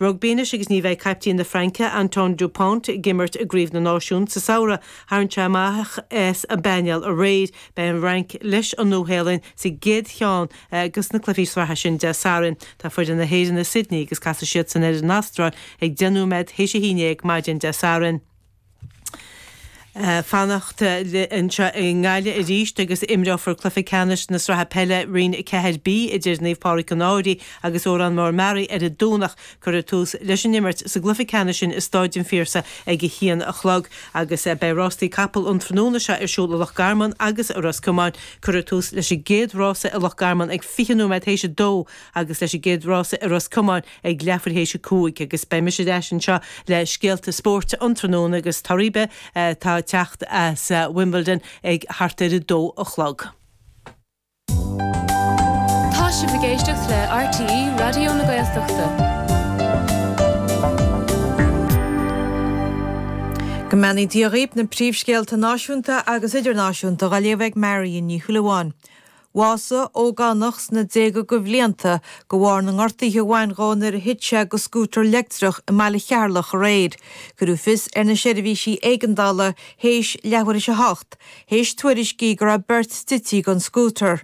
Rugbaí anois agus ní bheidh caiptín na Fraince, Antoine Dupont, ag imirt i gCraobh na Náisiún sa samhradh. Tharraing sé amach as an bpainéal aréir. Beidh an Fhrainc leis an Nua-Shéalainn sa gcéad cheann de na cluichí sraithe sin Dé Sathairn. Tá foireann na hÉireann i Sydney agus casfaidh siadsan ar an Astráil ag 10 nóiméad théis a haon dhéag maidin Dé Sathairn. fanacht anseo i nGaillimh arís agus imreofar cluiche ceannais na sraithe peile Roinn 4B idir Naomh Pádraig an Fháirche agus Órán Mór-Meáraí ar an Domhnach. Cuirfear tús leis an imirt sa gcluiche ceannais sin i Stáid an Phiarsaigh ag a haon a chlog agus beidh rástaí capall an tráthnóna seo ar siúl i Loch Garman agus i Ros Comáin. Cuirfear tús leis an gcéad rása i Loch Garman ag fiche nóiméad théis a dó agus leis an gcéad rása i Ros Comáin ag leathuair théis a cúig agus beidh mise ar ais anseo le scéalta spóirt an tráthnóna agus toradh ar bith atá ag teacht as Wimbledon ag thart ar a dó a chlog. Tá sibh ag éisteacht le RTÉ Raidió na Gaeltachta. Go mbeannaí Dia dhaoib na príomhscéalta náisiúnta agus idirnáisiúnta dá léamh ag Marion Ní Shúilleabháin. Bhásaigh ógánach sna déaga de bhlianta de bharr na ngortaithe a bhain dhó nuair a thit sé de scútar leictreach i mBaile Cheatharlach aréir. Cuireadh fios ar na seirbhísí éigeandála théis leathuair théis a hocht, théis tuairiscí go raibh beirt tite den scútar.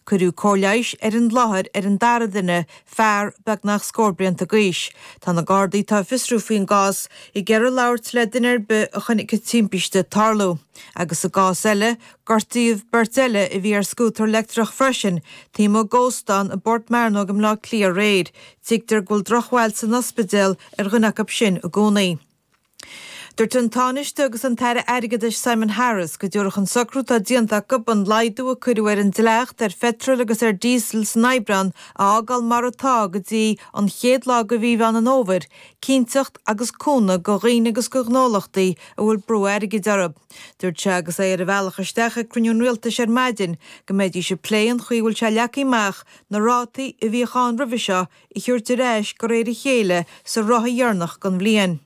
Cuireadh cóir leighis ar an láthair ar an dara duine, fear beagnach scór blianta d'aois. Tá na Gardaí atá ag fiosrú faoin gcás ag iarraidh labhairt le duine ar bith a chonaic an timpiste ag tarlú, agus i gcás eile, Gortaíodh beirt eile a bhí ar scútar leictreach freisin taobh amuigh d'óstán i bPort Mearnóg i mBleá Cliath aréir. Tuigtear go bhfuil drochbhail san ospidéal ar dhuine acu sin i gcónaí. Dúirt an Tánaiste agus an tAire Airgeadais Simon Harris go dtabharfadh an socrú atá déanta acu an laghdú a cuireadh ar an dleacht ar pheitreal agus ar dhíosal san Aibreán a fhágáil mar atá go dtí an chéad lá de mhí Mheán an Fhómhair cinnteacht agus cúnamh do dhaoine agus do ghnólachtaí a bhfuil brú airgid orthu. Dúirt sé agus é ar a bhealach isteach ag cruinniú an Rialtais ar maidin go mbeidís ag plé an chaoi a bhfuil sé leagtha amach na rátaí a bhíodh ann roimhe seo a thabhairt ar ais de réir a chéile sa ráithe dheireanach den bhliain.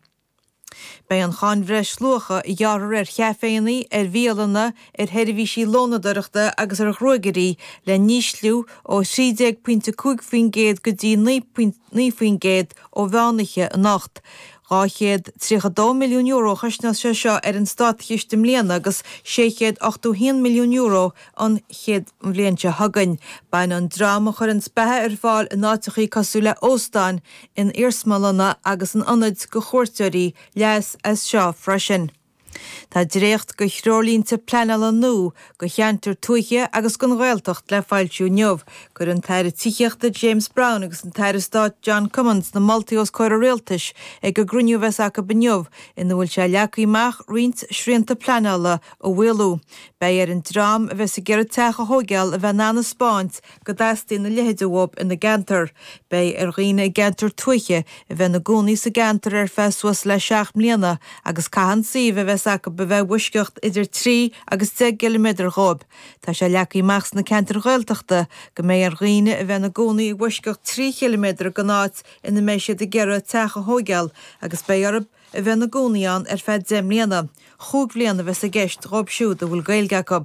Beidh an cháin bhreisluacha, a ghearrthar ar chaiféanna, ar bhialanna, ar sheirbhísí lónadóireachta agus ar ghruaigairí, le n-ísliú ó 13 pointe 5 faoin gcéad go dtí 9 faoin gcéad ó mheánoíche anocht. €232 milliún a chosnós sé seo ar an státchiste i mbliana agus €681 milliún an chéad bhliain seo chugainn. Bainfidh an dream a chuireanns beatha ar fáil in áiteachaí cosúil le hóstáin, in iarsmalanna agus in ionaid do chuairteoirí leas as seo freisin. Tá dréacht de threoirlínte pleanála nua do cheantair tuaithe agus don Ghaeltacht le foilsiú inniu. Cuirfidh an tAire Tithíochta James Browne agus an tAire Stáit John Cummins na moltaí os comhair an Rialtais ag an gcruinniú a bheas acu inniu ina bhfuil sé leagtha amach roinnt srianta pleanála a mhaolú. Beidh ar an dream a bheas ag iarraidh teach a thóigeáil a bheith in ann a 'speáint go dteastaíonn a leithide uathu ina gceantar. Beidh ar dhaoine i gceantair tuaithe a bheith ina gcónaí sa gceantar ar feadh suas le seacht mbliana agus caithfidh an suíomh a bheas acu a bheith i bhfoisceacht idir trí agus deich gciliméadar dhóibh. Tá sé leagtha amach sna ceantair Ghaeltachta go mbeidh ar dhaoine a bheith ina gcónaí i bhfoisceacht trí chiliméadar den áit ina mbeidh siad ag iarraidh teach a thóigeáil agus beidh orthu a bheith ina gcónaí ann ar feadh deich mbliana. Chúig bhliain a bheas i gceist dhóibh siúd a bhfuil Gaeilge acu.